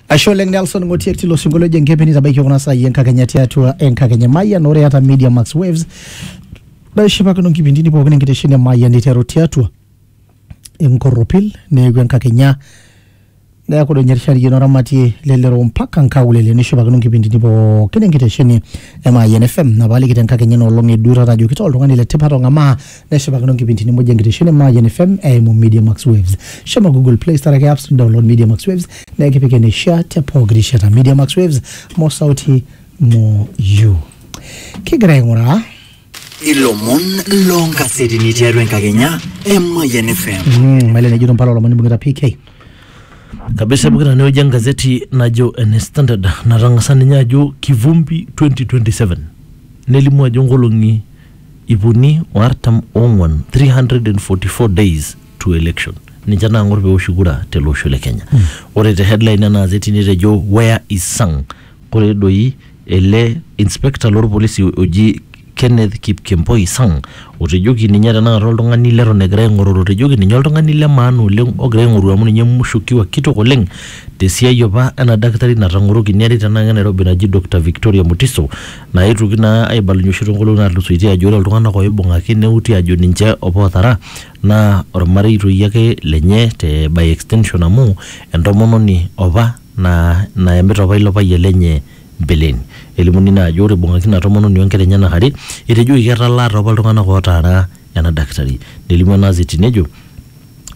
ashe oleng nelson ng'otie tilo sinkolio ojo enkepeni tabaiki kuna saai enkakenya tiatua enkakenya mayian ore eata media max waves naishipakino nkipindini pookin enkitesheni e mayian iteru tiatua enkorropil neeku enkakenya neeku doi ninye erishariyian oramatie lelero mpaka nkaulele nishipakino nkipindini pookin enkitesheni e mayian fm napaaliki tenkakenya enoolong eduo taata ajoki taa oltung'ani le tipat ong'amaa neshipakino nkipintini muj enkitesheni e Mayian FM eimu Media Max Waves. Shomo Google Play Store ake apps download Media Max Waves naa ekipik eneishia te pooki rishata. Media Max Waves, more sauti, more you. Kigira aing'uraa ilomon loonkasetini tiatua enkakenya e Mayian FM. mm, maile nejito mpala olomoni bung'ita PK. kabisa pokira tenewueji engazeti najo ene standard natang'asa ninye ajo kivumbi 2027 nelimu ajo nkolong'i iip uni o artam o ong'uan, 344 days to election ninche naang'or peoshi kura tele osho le Kenya. Ore te headline ena azeti netejo where is Sang? Ore doi ele inspector loo lpolisi oji Kenneth Kipkemboi Sang otejoki ninye tenakata oltung'ani leton egirai aing'oruru otejoki ninye oltung'ani le maana oleng ogirai aing'oru amu ninye mushukiwa kitok oleng te siai apa ena dakitari natang'oroki neari tenakata e Nairobi naji Doctor Victoria Mutiso Naaetuoki naa aibalunye oshi too nkolong'i naatulusoitie ajo ore iltung'anak ooibung'aki neuti ajo ninche opa ootara naa olmarei toi ake lenye te by extension amu entomononi opa naa nayamita opa ilo payian lenye mbeleni. Elimuni naa ajo ore eibung'aki ina tomononi o nkera enyenak are etejoki ketalaa taa opa iltung'anak ootaara ena dakitari. Nelimu ena azeti nejo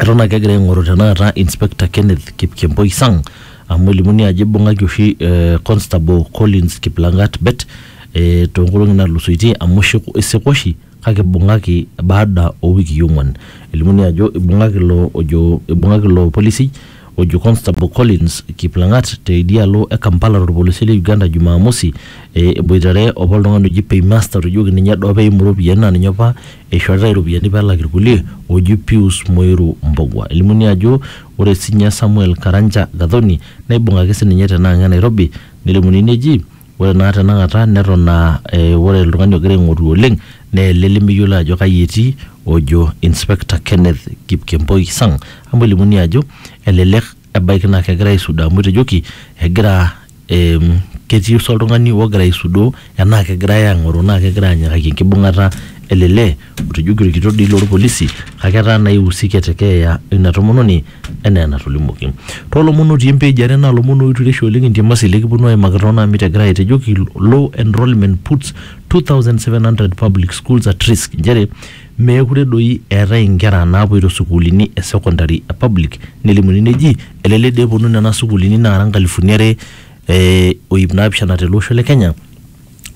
eton ake egira aing'oru tenakata inspector Kenneth Kipkemboi Sang amu elimuni ajo ibung'aki oshi eh, constable Collins Kiplangat Bet eh, toonkolong'i natulusoitie amu isik- isika oshi kake ibung'aki baada owikii ong'wan elimuni ajo ibung'aki ilo ojo ibung'aki ilo polisi ojo constable Collins Kiplangat te idia alo e Kampala torpolosie le Uganda Jumamosi eh, eboitare opa oltung'ani oji paymaster ojoki ninye doo peimu iropiyiani naa ninye opa Eishoritae iropiyiani pee elak ilkulie ooji Pius Muiru Mbogwa. Elimuni ajo ore sininye Samuel Karanja Gathoni neibung'aki sininye tena ang e Nairobi nelimuni neji ore naa tenakata neton aa ore oltung'ani ogira aing'oru oleng naa ele lemeyioloi ajo kai etii ojo Inspector Kenneth Kipkemboi Sang amu elimuni ajo elelek ebaiki naa kegira aisuda amu etejoki egira em, ketii oshi oltung'ani ogira aisudoo enaa kegirae ang'oroo naa kegirae anyikaki enkibung'ata ele lee otejoki orkitok dii lorpolisi kake etaa naa ihusike te keeya ina tomononi enaa enatolimuoki toolomon otii em page are naa ilomon oitureisho oleng entiamasi likiponu aimaki toonaa mit egirae aitejoki low enrolment puts 2700 public schools at risk inchere Meekure doi eetae inkera naapoito sukuulini e secondary e public nelimuni neji elelek doi eponu nena sukuulini naara nkalifuni are o iip naapishana tele osho le Kenya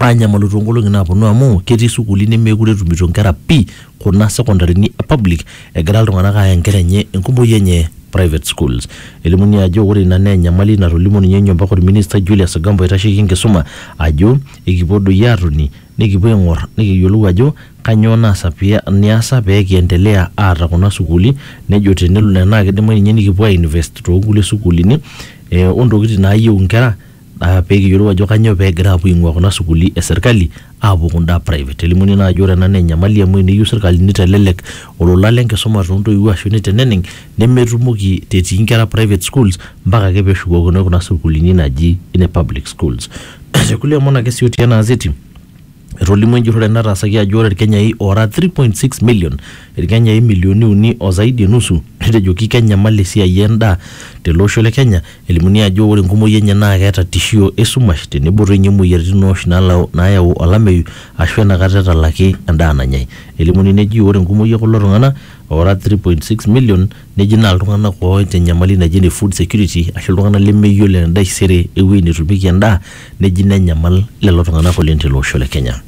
aanyamalu too nkolong'i naaponu amu ketii sukuuli nemeekure etumito inkera pii kuna sekondarini e public egira iltung'anak aaya inkera enye enkumoi enye private schools. Elimuni ajo ore ina naa enyamali natolimuo ninye Nyomba Kod Ministai Julius Ogamba oitasheki enkisuma ajo ekipuo doi aatoni Nikipuo aing'or nikiyiolou ajo kanyoo naasa pee niasa pee kiendelea aata kuna sukuuli nejo tenelo naa kidimayu ninye nikipuo ainvest toonkulie sukuulini eh ontokiting naayieu inkera uh pee kiyiolou ajo kanyoo pegira apuo aing'ua kuna sukuuli e serkali apuo kunda private elimuni naa ajo ore ena naa enyamali amu eneyieu serkali nitelelek olola lenkisuma tontoiwuo ashu niteneneng. nemetumoki te etii inkera private schools mpaka ake peeshukokinoi kuna sukuulini naji ine public schools. Te kulie omon ake sii otii ena azeti, etolimuo enjurrore nataasaki ajo ore Ilkenyai oora 3.6 million, Ilkenyai imilioni uni o zaidi e nusu, netejoki kenyamal esiai e ndaa tele osho le Kenya, elimuni ajo ore enkumoi enye naa keeta tishio e sumash tenebo toi ninye imoyiaritin oosh naayau olameyu aashu enakata etalaki endaa nanyai. Elimuni neji ore enkumoi e kulo tung'ana oora 3.6 million neji naa iltung'anak ooita enyamali naji ene food security ashu iltung'anak lemeyiolo entaisere ewueji netumieki endaa neji nenyamal lelo tung'anak oleng tele osho le kenya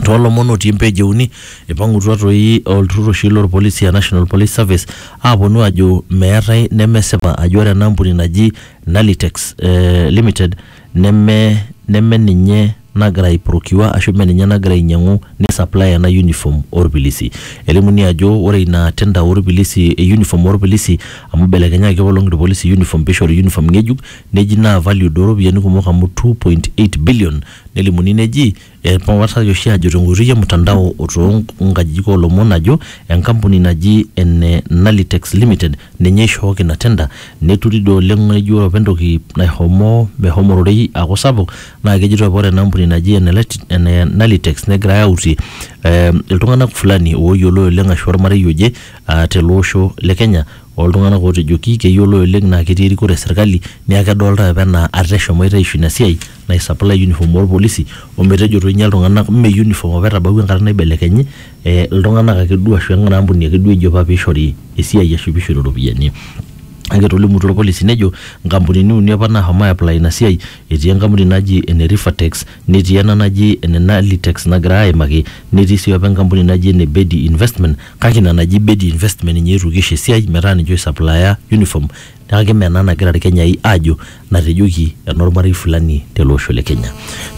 toolomon otii page euni ipang'utua toi olturrur oshi lorpolisi aa national police service aponu ajo meetae nemesipa ajo ore ena ampuni naji nalitex eh, limited neme neme ninye nagira ai procure ashu mme ninye nagira ainyiang'u ni supply ena uniform orpilisi elimuni ajo ore ina tender orpilisi e uniform orpilisi amu ibelekenyaki apa olong irpolisi uniform pishori uniform ng'ejuk neji naa valued oropiyiani kumok amu two point eight billion nelimuni neji Epawataraki oshi ajo tenkoitoi e mtandao o too nkajijik oo lomon ajo enkampuni naji ene Nalitex Limited ninye oishooki ina tenda. Neturi doi oleng naa ijo ore apa entoki naishomo meshomo ororei aaku sapuk naa kejitoi apa ore ena ampuni naji ene Nalitex negirai autie iltung'anak fulani ooyioloi oleng ashu ormarei oje tele osho le Kenya oo ltung'anak ootejoki keyioloi oleng naa ketii erikore e serkali niaku kedolitae apa enaa ate eshomoita aisho ina siai naisaplai uniform oorpolisi ometejo etoinyia iltung'anak mme uniform apa etabawua enkata naibelekenyi eh, iltung'anak ake duo ashu ena ampuni ake duo eji apa piishori esiai ashu piishori iropiyiani. Kake etolimutuo irpolisi nejo inkampunini uni apa naashomo ai apply ina siai etii enkampuni naji ene Rifatex netii ena naji ene Nalitex nagirai aaimaki netii sii apa enkampuni naji ene Bedi investment kake ina naji Bedi investment ninye eetuoki aisho esiai metaa ninche oisaplaya uniform Kake mme ena nagira Ilkenyai aajo natejoki enormarei fulani tele osho le Kenya.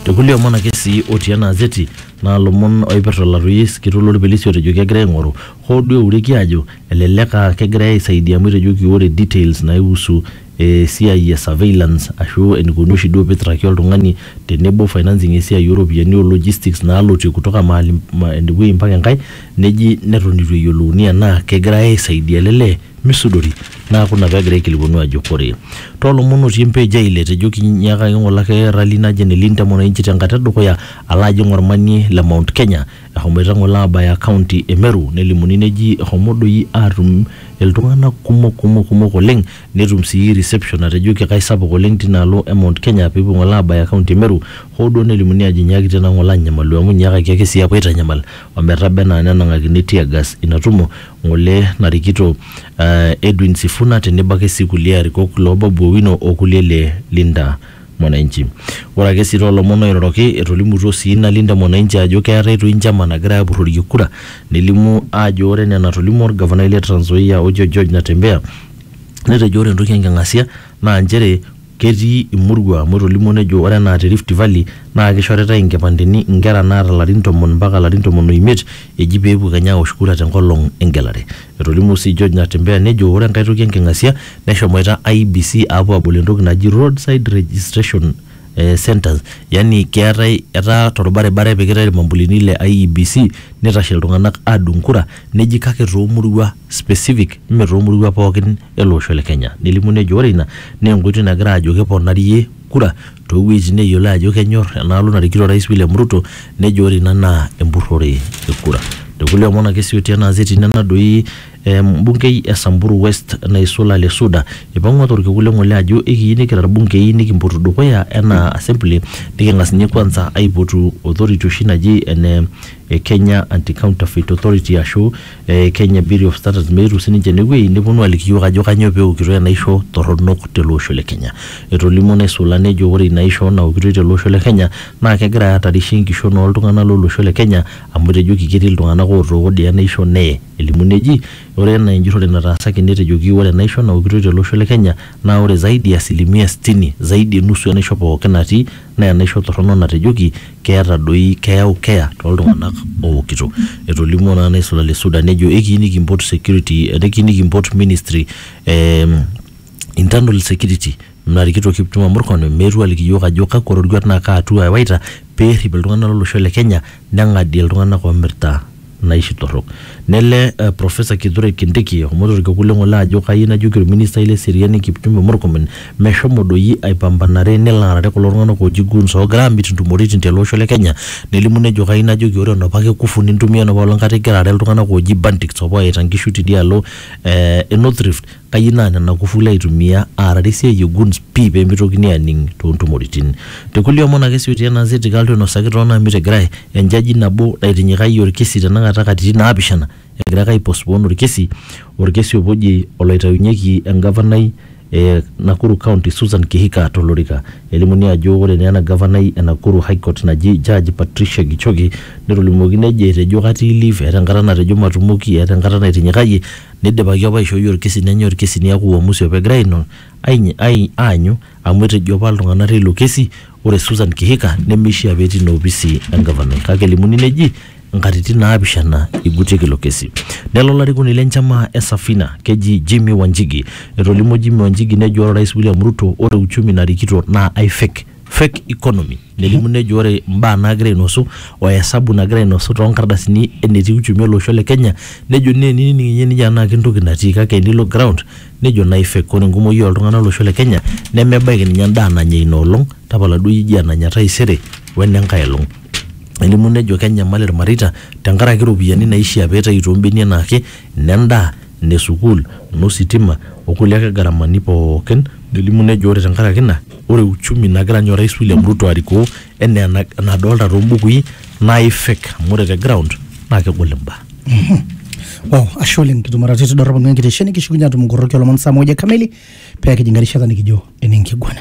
Te kulie omon ake sii otii ena azeti naa lomon oipirta olarueyiai kitok lo lpilisi otejoki egirai aing'oru hoo duo eureki aajo elelek aa kegirai aisaidia amu etejoki ore details naihusu esiai e surveillance aashu eneikoni oshi duo pee eitraki oltung'ani tenebo financing e siai oo ropiyiani o logistics naalotie kutoka mahali ene wueji mpaka enkae neji neton eitu eyiolouni enaa kegirai aisaidia ele lee. misudori naaku ina pegira aikilikuanu ajo kore toolomon otii empage ai ile tejo kinyiakaki ng'ole ake rally naje ene Linda Mwananchi tenkata edukuya alo ajing ormanie le Mount Kenya ehomoita ng'ole aabaya county e Meru nelimuni neji ehomo doi aatum iltung'anak kumok kumok kumok oleng netum sii reception natejoki kaisapuk oleng tina alo e Mount Kenya peepuo ng'ole aabaya county e Meru hoo duo nelimuni aajo inyiakitia naa ng'ole anyamalu amu inyiakaki ake sii aapuo aitanyamal ometaba enaa nenang'akini teargas ina tumo ng'ole narikito eh, Edwin Sifuna tenebo ake sii kulie arikok loo Babu Owino o kulie le Linda Mwananchi. Ore ake sii too lomon oiroroki etolimutuo sii ina Linda Mwananchi ajo keeta Etoi enchama nagirai aapurrorie kura nelimu aajo ore enaa enatolimuo olgavanai le Trans Nzoia ojo George Natembeya netejo ore entoki enking'asia naa nchere Ketii imurua amu etolimuo nejo ore enaa te Rift Valley naa keishoritai inkipandeni inkera naata larin tomon mpaka larin tomon o imiet eji pee epuo kenya aosh kura te nkolong engelare. Etolimuo sii George Natembeya nejo ore enkae toki enking'asia neshomoita IEBC aapuo aabol entoki naji Road side registration centres yani keetae etaa tolbaribara epikitai ilmambulini le IEBC neitashe iltung'anak aadung kura neji kake too murua specific mme too murua pookin. ele osho le Kenya. Nelimu nejo ore ina naa enkoitoi nagira ajo keponarie kura too wuejitin neyiolo ajo kenyor enaalo narikito Orais William Ruto nejo ore ina naa empurrore e kura. Te kulie omon ake sii otii ena azeti nena doi embungei e Samburu West naisul Ale Suda eipang'ua to lkekun le ng'ole ajo ekiyieu nikira ilbungei nikimpotu dukuya enaa assembly niking'as ninye kwanza aipotu authority oshi naji ene Kenya Anti-Counterfeit Authority ashu e Kenya Bureau of Standards meetu sininche ene wueji neponu aliki iyiook ajo kanyoo pee eokitoi enaisho torronok tele osho le Kenya. Etolimuo Naisula nejo ore ina aisho naokitoi tele osho le Kenya naa kegira aahatarisha enkishon oo ltung'ana lo losho le Kenya amu etejoki ketii iltung'ana ootooko dii enaisho neye. Elimu neji ore enaa enjurrore nataasaki netejoki ore enaisho naokitoi tele osho le Kenya naa ore zaidi ya asilimia sitini, zaidi e nusu enaisho pooki natii naa enaisho torrono natejoki keeta doi keyau keeya too ltung'anak ookito. Etolimuo naa naisula le Suda nejo ekiyieu nikimpot security ekiyieu nikimpot ministry e internal security narikito Kipchumba Murkomen meetu aliki iyiook ajo kakwa roruat naa kaa hatua ewaita pee errip iltung'anak lo losho le Kenya neng'adie iltung'anak oomirta naishi torrok. Nele Professor Kithure Kindiki eshomoita olkekun le ng'ole ajo kayieu najoki olministai le seriani Kipchumba Murkomen meshomo doi aipambanare nelo aarare kulo tung'anak ooji goons oogira aamit ntumoritin tele osho le Kenya nelimu nejo kayieu najoki ore enopake kufu nintumia enopa olong kata igira aarare iltung'anak ooji bandits opa ooyaita nkishu tidialo e North Rift Kayieu naa nena kufuli aitumia aarare esiai e Guns pii pee meitokini aaning too ntumoritin. Te kulie omon ake sii otii ena gazeti Kaltu einosaki too naamiti egirai enjaji nabo naitinyikayie olkesi tenakata katitin naapishana egira ake aipostpone olkesi olkesi opa oji oloitayunyeki engavanai e Nakuru County Susan Kihika to lorika. Elimuni ajo ore naa ena gavanai e Nakuru High Court naji Judge Patricia Gichoki netolimuoki nejo etejo katii leave eeta enkata natejo matumoki eeta enkata naitinyikayie Neidipaki apa aishooi olkesi nenyae olkesi neaku uamusi apa egirai aing'or aanyu amu etejo apa iltung'ana teilo kesi ore Susan Kihika nemeishiaa pee etii ina opisi engavanai kake elimuni neji inkatitin naapishana eigutieki ilo kesi. Nelo olarikoni le nchama e Safina keji Jimmy Wanjigi. Etolimuo Jimmy Wanjigi nejo ore Orais William Ruto ore uchumi narikito naa ai fake. fake economy nelimu nejo ore mbaa naagira ainosu o esabu nagira ainosu too nkardasini enetii uchumi olosho le Kenya nejo naa enining ninye nijo anaa kentoki natii kake enilo ground nejo nai fake. Ore enkumoi oo ltung'ana lo losho le Kenya nemebaiki ninye endaa nanya ina olong tapala duo iyie ijo enanya taisere o ene nkae olong. Nelimu nejo kenyamal ilmareita tenkaraki iropiyiani naishia peitayu too mbenia enaake, ine ndaa, ne sukuul, no sitima o kulie ake garamani pookin, nelimu nejo ore tenkaraki ina, ore uchumi nagira ninye Orais William Ruto arikoo enaa ena- enadolta too mbukui naa ifek amu ore te ground naa kegol imbaa. Wow, ashe oleng kitumaratu tidorropu enkitesheni kishukunye atum nkoroki olomon saa moja kamili pee kijing erishata nikijo ene nkiguana.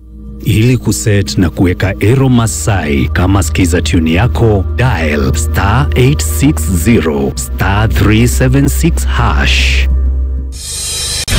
Ili kuset na kuweka Ero Masai kama skiza tune yako, dial star 860 star 376 hash.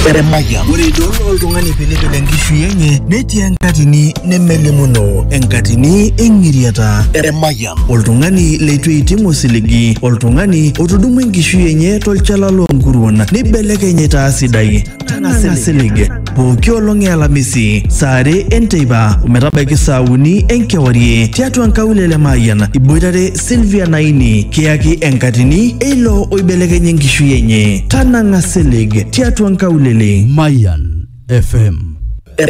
Eremaya. Ore idol oltung'ani pilipil enkishui enye netii enkatini nemelimuno enkatini eng'iriata. Eremaya. Oltung'ani leitu eiting osiligi, oltung'ani otudumua enkishui enye tolchala loonkuruon neibelekeny aitaa sidai. Tang'asa silig pooki olong e Alamisi saa are enteipa ometabaiki saa uni enkewarie tiatua nkaulele Mayian iboitare Sylvia Naini kiyaki enkatini eilo oibelekenye enkishui enye. Tanang'a silig tiatua nkaulele. Mayan FM